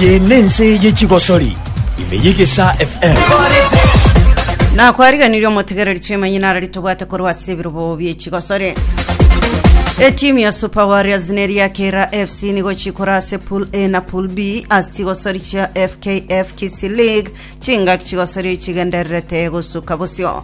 Eye nense ye chigosori ime yegesa FM. nakwariganirie omotigereri chiemanyina arari tobwate korwa ase ebirobo biechigosore etimu ya super warriors neri ya kera fc nigo chikora ase pool a na pool b ase chigosori chia fkf kisi league chingaki chigosori chigendererete gosuka bosio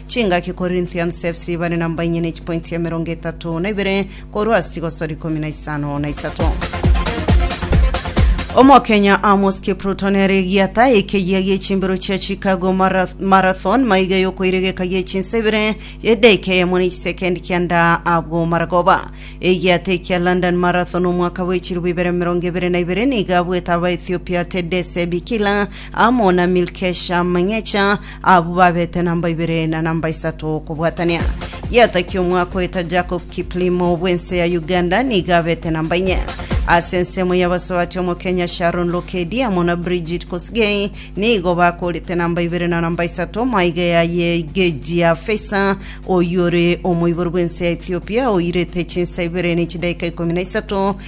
Chingaki Corinthians FC bare na mbainye ne chipointi emerongo etato na ibere korwa ase chigosori ikomi na isano na isato. Omokenya Amos Kipruto nere egiata ekeyia gie chimbero chia Chicago Marath- Marathon maiga yokoiregeka gie chinsa ibere edaika eyemo na isekendi kianda abwo maragoba. Egiata ekia London Marathon omwaka bwe chirubu ibere merongo ebere na ibere nigo abwete Abaethiopia Tedesse Bikila amo na Milkesha Mengecha Abwo babete namba ibere na namba isato okobwatania. Yataki omwaka oeta Jacob Kiplimo bw'ense ya Uganda niga abete namba inye. Ase ensemo y'abasoati omokenya Sharon Lokedi amo na Bridget Kosgei nigo bakorete namba ibere na namba isato maiga ya Yegejia Feisa oyore omoibori bw'ense ya Ethiopia oirete chinsa ibere ne chidaika ikomi na isato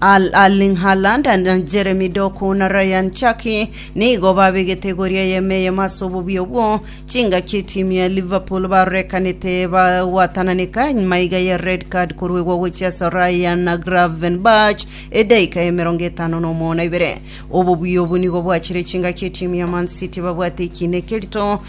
Al Erling Haaland na Jeremy Doku na Ryan Chaki nigo babegete egoria y'eme eyemo ase obobio obwo chingaki etimu ya Liverpool barorekanete bagwatananeka nyuma iga ya red card koruegwa gochia ase Ryan na Gravenberch edaika ya emerongo etano na omono na ibere. Obobio obo nigo bwachire chingaki etimu ya Man City babwate ekiina ekerito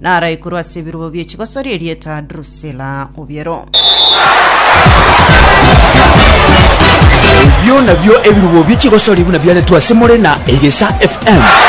naraikorwe ase ebirobo bie chigosori erieta Drusila obiero. Ebio nabio ebirubo bie chigosori buna biaretwe ase more na Egesa FM.